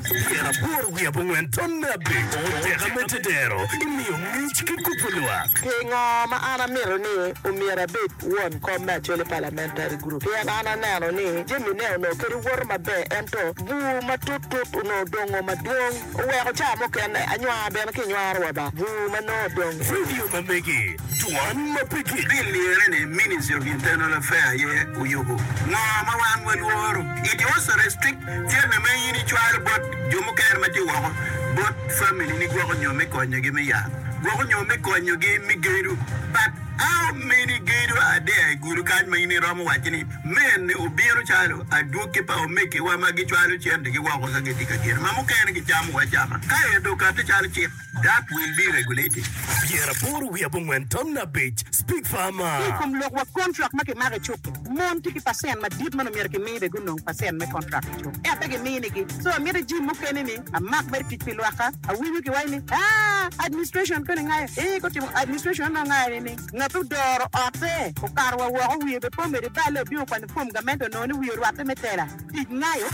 Tyen aboro wiye abongwen tonne abiro, Teka me tedero imiyo ngec ki kubo lwak. Pingo ma an amito ni omyero abed won kom me Acholi Parliamentary Group? Pien an aneno ni jamine onongo kadi woto maber ento bur matut tut onongo odongo madwong oweko ca mukene anywar bene kinywaro wa ba bur ma nongo odong. Vidio ma megi, Dwan ma pe gik. Bil lirre ni Ministry of Internal Affairs aye oyubo ngo ma wan walworo? It was restricted. Jami ma in icwalo bot jo mukene ma tye woko bot familini gwoko nyo me konyogi me yat, gwoko nyo me konyogi me gedo. But how many gedo are there i gulu kany ma in iromo waco ni mene obino calo adwogi pa omegiwa ma gicwalo centigi woko ka gitye ka gedo ma mukene gicamo acama kaeto okato calo cik? Dak wil me regulating pyera aboro wiye abongwen tamna abic, Speak Farmer. Ki i kom lok wa kontrak ma kimako i cuk-ki, mon tye ki pacent madit ma nongo myero kimi bene gunong pacent me kontrak i cuk, ento pe giminigi. So, amito jim mukene ni amak mere tic pi lwakka. Awinyo kiwaco ni, Ah, administration koni ngayo. Ee, gutimo administration anongo ngayo ni ni ngat ma odoro otte okato wa woko wiye bepomede balle obino kwanyo fom gamente onongo ni wiye orwatte me tela. Tic nayo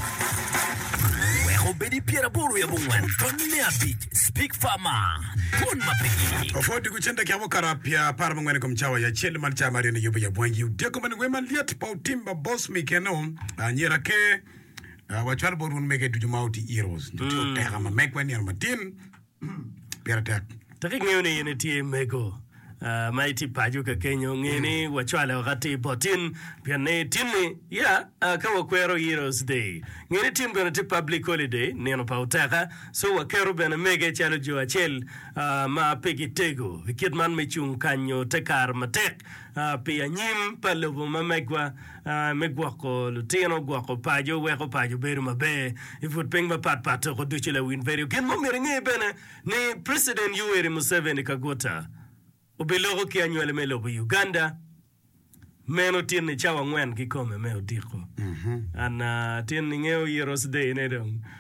wek obed i pyer aboro wiye abongwen dok me abic Speak Farmer Twon ma pigi. Ofwod diko cente ki avokado pyer apar abongwen i kom cawa acel man cawa maryo ni yubo yabwangi i Odeko ma niwema lyet pa Otimba Boss me keno anyira ake wacwal bot wun mege ducu ma oti Heroes nyo tye oteka ma megwa i nino matin pire tek. Tek ingeyo ni in itye mego ma itye paco ka kenyo. Nge ni wacwale woko atir bot tin, pien ni tin-ni, ya, ka wakwero Heroes Day, nge ni tin bene tye Public Holiday, nino pa oteka, so waketo bene mege calo jo acel ma pe gitego i kit man me cung kanyo te kare matek pi anyim pa lobo ma megwa. me gwoko lutino, gwoko paco, weko paco bedo maber i but piny mapat pat toko ducu lawin bedo. Gin mo myero inge bene ni President Yoweri Museveni Kaguta obiloko ki anywali me lobo Uganda meno tin ni cawa angwen kikome me odiko. An ah, tin inge oyiro sdei ne dong.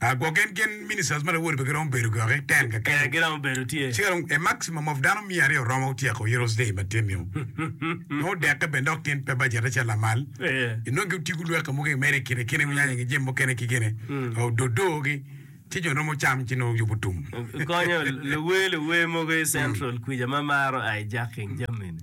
A Gwok en gin ministers ma lawote pe giromo bedo gwok-ki, ten ka kene. Ee, giromo bedo tye. Cika dong a maximum of dano miya aryo romo otyeko Heroes Day ma tyen-niu. Nongo odekke bene dok tyen pe bajette calo lamal. Ee. Inongo giotiko lwak ka mogo i mere i kine kine, gunyanya nge jami mukene ki gene, ka ododogi, ci jo romo cam ci nongo yubo tum. Konyo luwer luwer mogo i Central kwica ma maro hijacking jami-ni.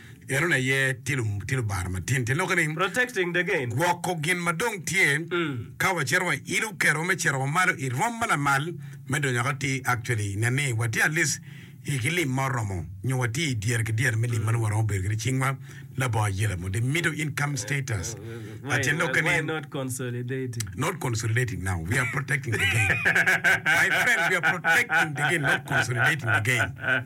Enoni aye tye lubaro matin, tye lok ni, gwoko gin ma dong tye ka wacito wailo kero me cito wa malo i rwom ma lamal me donyo akati. Actually, nen ni watye at least i ki lim ma oromo nyo watye i dyere ki dyere me lim ma nongo waromo bedo kwede cingwa labongo ayela mo. The middle income status a tye lokke ni, not consolidating now, we are protecting the gain. My friend, we are protecting the gain, not consolidating the gain.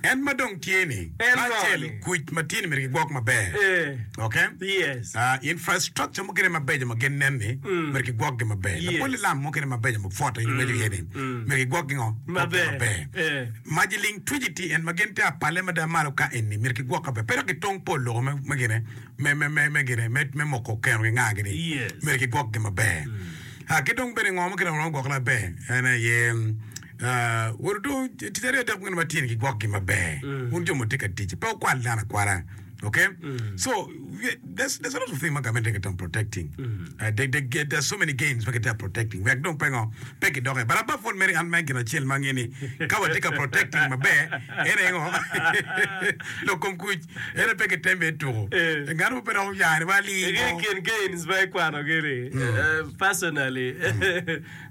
En ma dong tye ni acel kuc ma tye ni myero gigwok maber ok infrastructure mukene mabeco ma gin nen ni myero gigwok gi maber lapoli lam mukene mabeco ma pwota in iweco iye ni myero gigwok gi ngo maber maji ling twiji tye en ma gin te apale mada malo ka eni myero gigwok maber pe dok gitong pol loko me gine me me me me gine me me moko keno gi nga gini myero gigwok gi maber ki dong bene ngo mukene ma romo gwok maber en aye Woto tic aryo dok bene ma tyengi gwokgi maber, wun jo ma wutye ka tic, pe wukwal dano akwala. Okay? So, we- there's, there's a lot of things ma government tye ka timo protecting. Uh, they, they get, there's so many gains ma kitye ka protecting. Wek dong pengo, pe kidoke. But above all, Mary, an me gin acel ma ange ni ka watye ka protecting maber, en engo? Lok kom kuc, en pe kitem bene tuko. Eh. Ngano ma pe dok oyane wa Igi lingo. kin gains ma ikwanogi ni, eh, personally.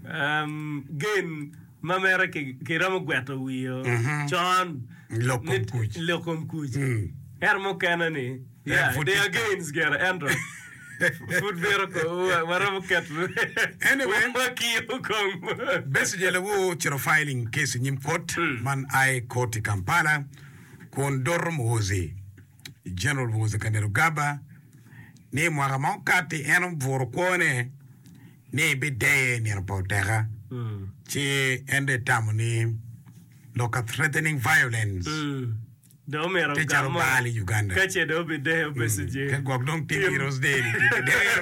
Gen ma mere kiromo gweto wio con lok kom kuc ento mukene ni yeah they are gains gire ento pud bito waromo keto wakiyo kong. Besigye lawo ocito filing case i nyim kot man aye koti Kampala kun doro Muhoozi. Jeneral Muhoozi Kainerugaba ni mwaka ma okatti en obuto kwone ni bideye i nino pa oteka ci en dong etamo ni lok ka threatening violence tye calo bal i Uganda ka gwok dong tim heroes day ni dong kidero.